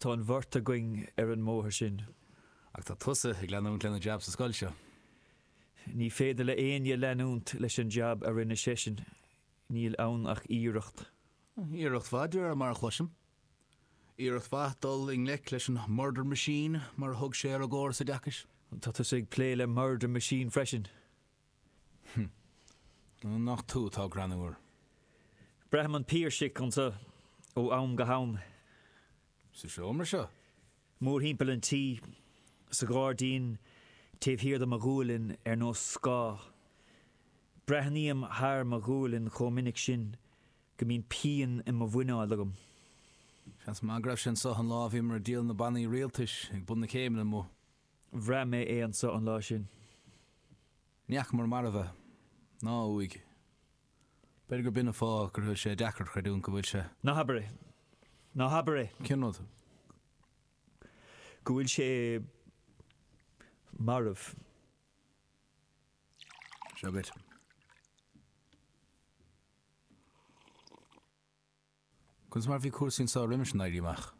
Tá an bheirt againn ar an mbóthar sin. Ach tá tusa ag leanúint lena jab sa scoil seo. Ní féidir le éinne leanúint leis an jab a rinne seisean. Níl ann ach iarracht. Iarracht mhaith, de réir mar a chloisim. Iarracht mhaith dul i ngleic leis an murder machine, mar a thug sé ar an gcóras oideachais. Tá tusa ag plé le murder machine freisin. Hm. Nach tú atá greannmhar! Braithim an Piarsach anso ó am go ham. Sa seomra seo? Mórthimpeall an tí. Sa ghairdín taobh thiar de mo ghualainn ar nós scáth. Breathnaím thar mo ghualainn chomh minic sin go mbíonn pian i mo mhuineál agam. Seans maith go raibh sé anso an lá a bhíomar ag díol na bannaí rialtais ag bun na céimeanna amuigh. Bhraith mé é anso an lá sin. Ní fhacamar marbh é, ná a uaigh. B'fhéidir gur b'in an fáth go bhfuil sé deacair a chreidiúint go bhfuil sé. Ná habair é! Ná habair é! Cén rud? Go bhfuil sé marbh. Seo dhuit. Conas mar a bhí cúrsaí anseo roimis an Éirí Amach?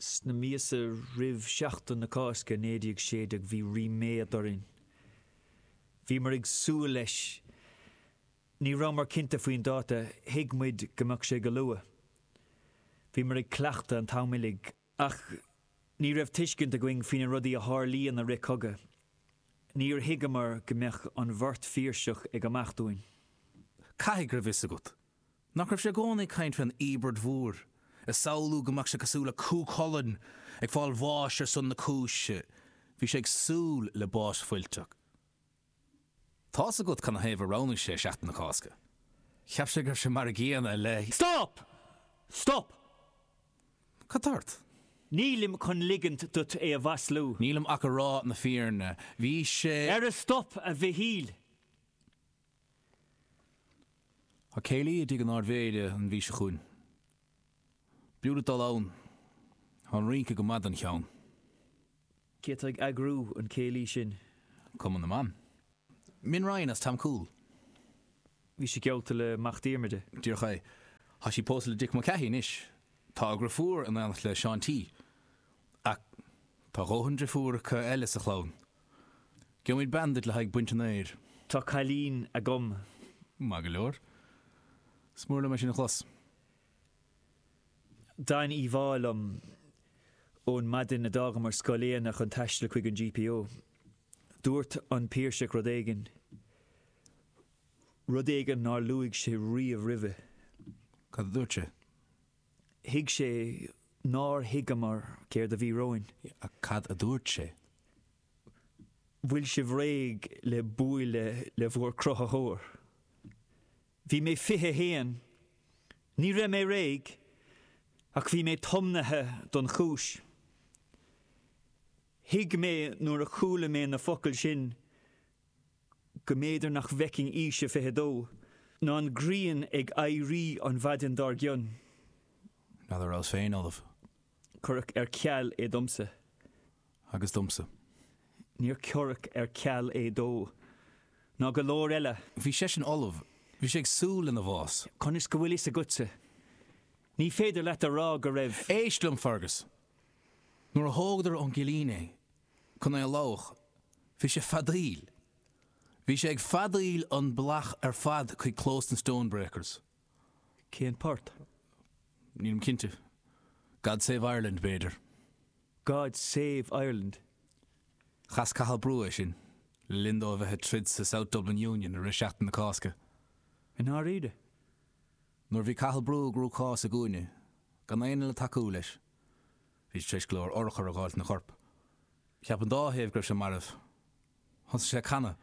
Sna míosa roimh Sheachtain na Cásca 1916 bhí ríméad orainn. Bhíomar ag súil leis. Ní rabhamar cinnte faoin dáta, thuig muid go mbeadh sé go luath. Bhíomar ag cleachtadh an t-am uilig Ach ní raibh tuiscint againn faoi na rudaí a tharlaíonn i rith cogadh. Níor thuigeamar go mbeadh an bheirt Phiarsach ag imeacht uainn. Caithfidh go raibh a fhios agat. Nach raibh sé i gcónaí ag caint faoin íobairt mhór, ag samhlú go mbeadh sé cosúil le Cú Chulainn ag fáil bháis ar son na cúise. Bhí sé ag súil le bás fuilteach. Tá's agat cad 'na thaobh a roghnaigh sé Seachtain na Cásca. Cheap sé go raibh sé mar an gcéanna le. Stop! Stop! Cad tá ort? Nílim chun ligint duit é a mhaslú. Nílim ach ag rá na fírinne. Bhí sé. Ara stop, a Mhichíl! Tá céilí i dtigh an Ardmhéara an mhí seo chugainn. B'fhiú duit dul ann. Tá an rince go maith don cheann. Cé atá ag eagrú an chéilí sin? Cumann na mBan. Min Ryan as Tomcoole. Bhí sí geallta le Mac Diarmada. Díreach é. Tá sí pósta le Dick Mulcahy anois. Tá a deirfiúr in aonacht le Seán T. Ach tá a dhóthain deirfiúracha eile sa chlann. Gheobhaimid bean duit le haghaidh baint an fhéir. Tá cailín agam. Maith go leor. Is mór liom é sin a chlos. D'fhan íomhá liom ón maidin a d'fhágamar Scoil Éanna chun taisteal chuig an GPO. Dúirt an Piarsach rud éigin, rud éigin nár luaigh sé riamh roimhe. Cad a dúirt sé? Thuig sé nár thuigeamar céard a bhí romhainn. Ach cad a dúirt sé? Bhfuil sibh réidh le buaileadh le bhur cruthaitheoir? Bhí mé 21. Ní raibh mé réidh, ach bhí mé tiomnaithe don chúis. Thuig mé nuair a chuala mé na focail sin go mb'fhéidir nach bhfeicfinn aois 22, ná an ghrian ag éirí an mhaidin dár gcionn. Ná rabhas féin ullamh. Cuireadh ar ceal é domsa. Agus domsa. Níor cuireadh ar ceal é dó. Ná go leor eile. Bhí seisean ullamh. Bhí sé ag súil lena bhás. Conas go bhfuil fhios agatsa? Ní féidir leat a rá go raibh. Éist liom, Fergus. Nuair a thógadar ón gcillín é chun é a lámhach, bhí sé ag feadaíl. Bhí sé ag feadaíl an bealach ar fad chuig clós na Stonebreakers. Cén port? Nílim cinnte. God Save Ireland, b'fhéidir? God Save Ireland? Chas Cathal Brugha é sin le linn dó a bheith ag troid sa South Dublin Union i rith Sheachtain na Cásca. I ndáiríre? Nuair a bhí Cathal Brugha i gcruachás i gcúinne, gan éinne le tacú leis, bhí sé tar éis go leor urchar a fháilt ina chorp. Cheap an dá thaobh go raibh sé marbh. Thosaigh sé ag canadh.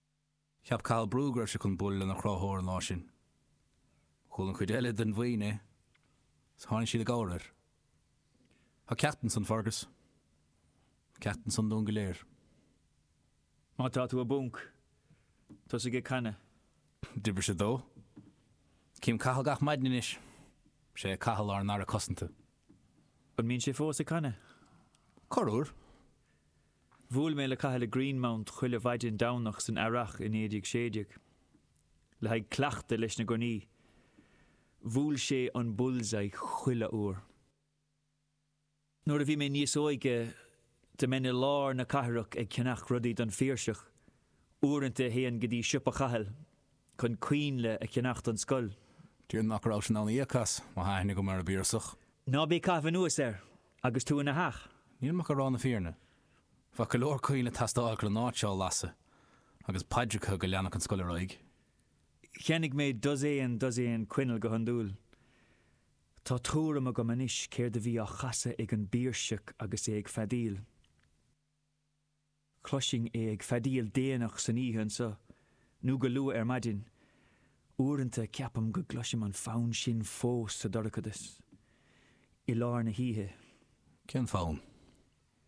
Cheap Cathal Brugha go raibh sé chun bualadh lena chruthaitheoir an lá sin. Chuala an chuid eile den bhuíon é agus tháinig siad i gcabhair air. Tá ceacht ansan, Fergus. Tá ceacht ansan dúinn go léir. Má tá tú i bponc, tosaigh ag canadh. D'oibrigh sé dó. Cím Cathal gach maidin anois. Is é Cathal ár nAire Cosanta. An mbíonn sé fós ag canadh? Corruair. Bhuail mé le Cathal i Greenmount chuile mhaidin Domhnaigh san earrach i 1916 le haghaidh cleachtadh leis na gunnaí. Bhuail sé an bullseye chuile uair. Nuair a bhí mé níos óige, bhínn i lár na cathrach ag ceannach rudaí don Phiarsach. Uaireanta théinn go dtí siopa Chathail. chun coinnle a cheannach don scoil. Déarfainn nach raibh sé in ann íoc as, má tá aithne go maith ar an bPiarsach. Ná bí ag caitheamh anuas air agus tú ina theach. Níl mé ach ag rá na fírinne. Bheadh go leor coinnle ag teastáil chun an áit seo a lasadh, agus paidreacha, go leanfadh an scoil ar aghaidh. Cheannaigh mé dosaen, dosaen coinneal go hiondúil. Tá tuairim agam anois céard a bhí á chasadh ag an bPiarsach agus é ag feadaíl. Chloisinn é ag feadaíl déanach san oíche anseo, nó go luath ar maidin. Uaireanta ceapaim go gcloisim an fonn sin fós sa dorchadas, i lár na hoíche. Cén fonn?